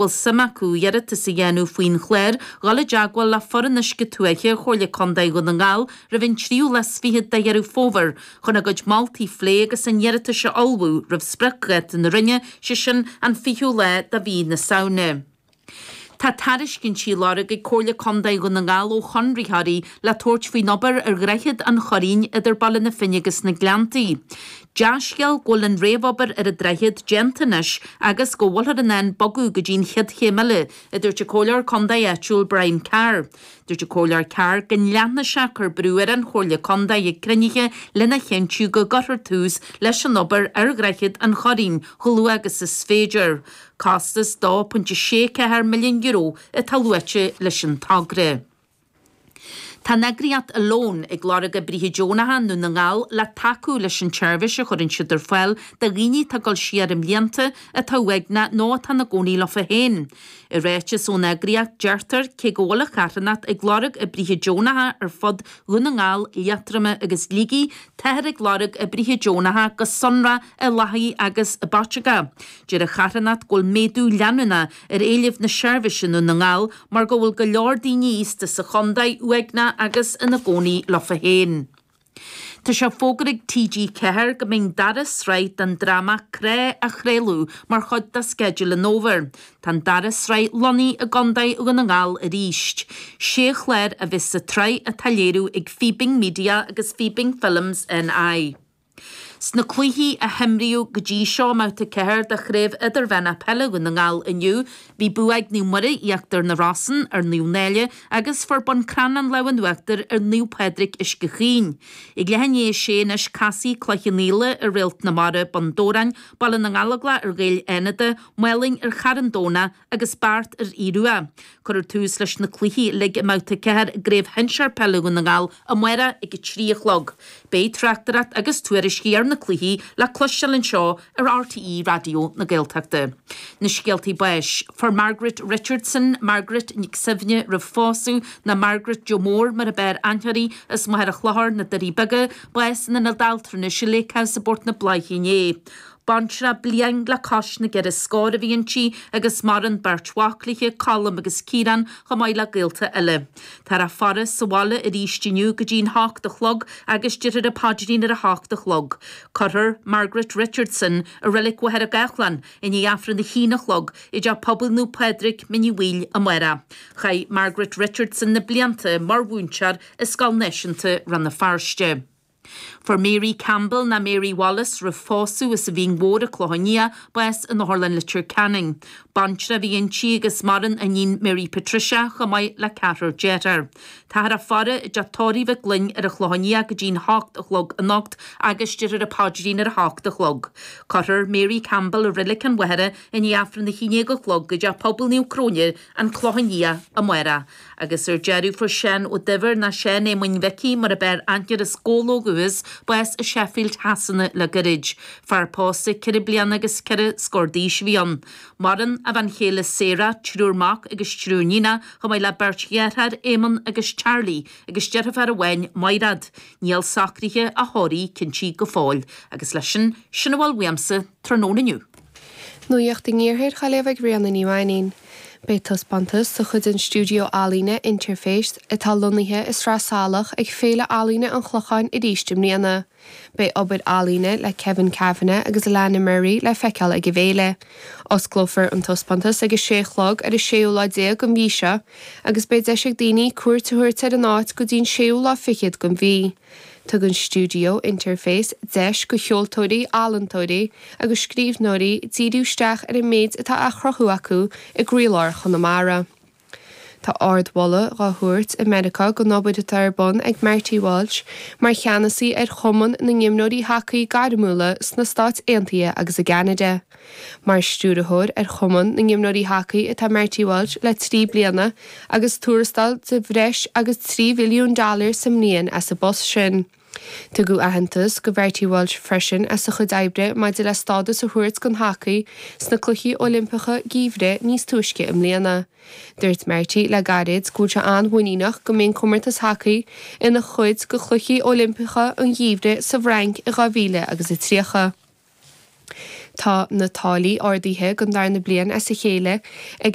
bhfuil suim acu iarratas a dhéanamh faoin chlár, dul i dteagmháil le Foireann Uisce Tuaithe Chomhairle Contae Dhún na nGall roimh an tríú lá is fichead de Dheireadh Fómhair chun a gcuid moltaí a phlé agus a n-iarratais a ullmhú roimh spriocdháta na Roinne, sé sin an 20ú lá de mhí na Samhna. Tá tairiscintí á lorg ag Comhairle Contae Dhún na nGall ó chonraitheoirí le tabhairt faoin obair ar Dhroichead an Churraoin idir Baile na Finne agus na Gleanntaí. Dea-scéal go bhfuil an réamhobair ar an droichead déanta anois agus go bhfuilthear in ann bogadh go dtí an chéad chéim eile, a dúirt an Comhairleoir Contae áitiúil Brian Carr. Dúirt an Comhairleoir Carr go leanfadh sé ag cur brú ar an Chomhairle Contae ag cruinnithe lena chinntiú go gcuirfear tús leis an obair ar dhroichead an Churraoin chomh luath agus is féidir. Costas €2.64 milliún atá luaite leis an togra. Tá an eagraíocht ALONE ag lorg oibrithe deonacha i nDún na nGall le tacú leis an tseirbhís a chuireann siad ar fáil do dhaoine atá ag dul siar i mblianta, atá uaigneach nó atá ina gcónaí leofa féin. I ráiteas ón eagraíocht, deirtear, cé go bhfuil an charthanacht ag lorg oibrithe deonacha ar fud Dhún na nGall, Liatroma agus Shligigh, táthar ag lorg oibrithe deonacha go sonrach i Lathaigh agus i bPaiteagó. Deir an charthanacht go bhfuil méadú leanúnach ar éilimh na seirbhíse i nDún na nGall mar go bhfuil go leor daoine aosta sa chontae uaigneach agus ina gcónaí leofa féin. Tá sé fógartha ag TG4 go mbeidh an dara sraith den dráma Cré á chraoladh mar chuid de sceideal an Fhómhair. Tá an dara sraith lonnaithe i gContae Dhún na nGall arís. Sé chlár a bheas sa tsraith atá á léiriú ag Fíbín Media agus Fíbín Films NI. Sna cluichí a himríodh go dtí seo i mBabhta 4 de Chraobh Idirmheánach Peile Dhún na nGall inniu, bhí bua ag Naomh Muire, Íochtar na Rosann ar Naomh Náille agus fuair Bun Cranncha lámh an uachtair ar Naomh Pádraig Uisce Chaoin. Ag leath i ndiaidh a sé anois casfaidh Cloich Cheann Fhaola ar Réalt na Mara, Bun Dobhráin, Baile na nGallóglach ar Ghaeil Fhánada, Málainn ar Charn Domhnach, agus Beart ar Aodh Rua. Cuirfear tús leis na cluichí uilig i mBabhta 4 i gCraobh Shinsear Peile Dhún na nGall amárach ag a trí a chlog. Beidh tráchtaireacht agus tuairiscí ar na cluichí le cloisteáil anseo ar RTÉ Raidió na Gaeltachta. Na scéaltaí báis. Fuair Margaret Richardson, Margaret Nic Suibhne roimh phósadh, nó Margaret Joe Mór mar ab fhearr aithne uirthi, as Machaire Chlochair, na Doirí Beaga, bás in Ionad Altranais Lake House i bPort na Bláiche inné. Baintreach bliain le cois na gceithre scór a bhí inti agus maireann beirt mhac léithe, Colm agus Ciarán, chomh maith le gaolta eile. Táthar á faire sa bhaile arís inniu go dtí'n hocht a chlog agus déarfar an paidrín ar a hocht a chlog. Cuirfear Margaret Richardson i Reilig Mhachaire Gathlán i ndiaidh Aifreann a haon a chlog i dTeach Pobail Naomh Pádraig, Mín Uí Bhaoill, amárach. Chaith Margaret Richardson na blianta mar mhúinteoir i Scoil Náisiúnta Rann na Feirste. Fuair Mary Campbell, nó Mary Wallace, roimh pósadh as an Mhín Mhór, An Clochán Liath, bás in Otharlann Leitir Ceanainn. Baintreach a bhí inti agus maireann a níon Mary Patricia chomh maith le ceathrar dearthár. Táthar á faire i dteach tórraimh Mhig Fhloinn ar an Chlochán Liath go dtí'n hocht a chlog anocht agus déarfar an paidrín ar a hocht a chlog. Cuirfear Mary Campbell i Reilic an Mhachaire i ndiaidh Aifreann a hAon Déag a chlog i dTeach Pobail Naomh Cróine, An Clochán Liath, amárach. Agus ar deireadh fuair Seán Ó Duibhir, nó Seán Éamoinn Mhicí mar ab fhearr aithne air as Comhlóg Uachtar bás i Sheffield Shasana le goirid. Fear pósta ceithre bliana agus ceithre scór d'aois a bhí ann. Maireann a bhean chéile Sarah, triúr mac agus triúr níonach, chomh maith le beirt dheartháir, Éamonn agus Charlie, agus deirféar amháin, Maighreád. Níl socraithe a thórraimh cinntithe go fóill. Agus leis sin, sin a bhfuil uaimsa tráthnóna inniu. Nuacht i ngiorracht dhá léamh ag Ríona Ní Mhainín. Beidh taispeántas de chuid an stiúideo ealaíne Interface, atá lonnaithe i Sraith Salach, ag Féile Ealaíne an Chlocháin arís i mbliana. Beidh obair ealaíne le Kevin Kavanagh agus Alannah Murray le feiceáil ag an bhféile. Osclófar an taispeántas ag a sé a chlog ar an séú lá déag den mhí seo agus beidh deis ag daoine cuairt a thabhairt ar an áit go dtí'n séú lá fichead den mhí. Tugann Stiúideo Interface deis go cheoltóirí, ealaíontóirí agus scríbhneoirí díriú isteach ar an méid atá á chruthú acu i gcroílár Chonamara. Tá ardmholadh dá thabhairt i Meiriceá don obair atá ar bun ag Marty Walsh mar cheannasaí ar Chumann na nImreoirí Hacaí Gairmiúla sna Stáit Aontaithe agus i gCeanada. Mar Stiúrthóir ar Chumann na nImreoirí Hacaí atá Marty Walsh le trí bliana agus tuarastal de bhreis agus trí mhilliún dollar sa mbliain as an bpost sin. Tugadh aitheantas go Mharty Walsh freisin as a chuid oibre maidir le stádas a thabhairt don hacaí sna Cluichí Oilimpeacha Geimhridh níos túisce i mbliana. Dúirt Marty le gairid go bhfuil sé an-mhuiníneach go mbeidh an comórtas hacaí ina chuid de Chluichí Oilimpeacha an Gheimhridh sa bhFrainc in 2030. Tá na táillí ardaithe don darna bliain as a chéile ag.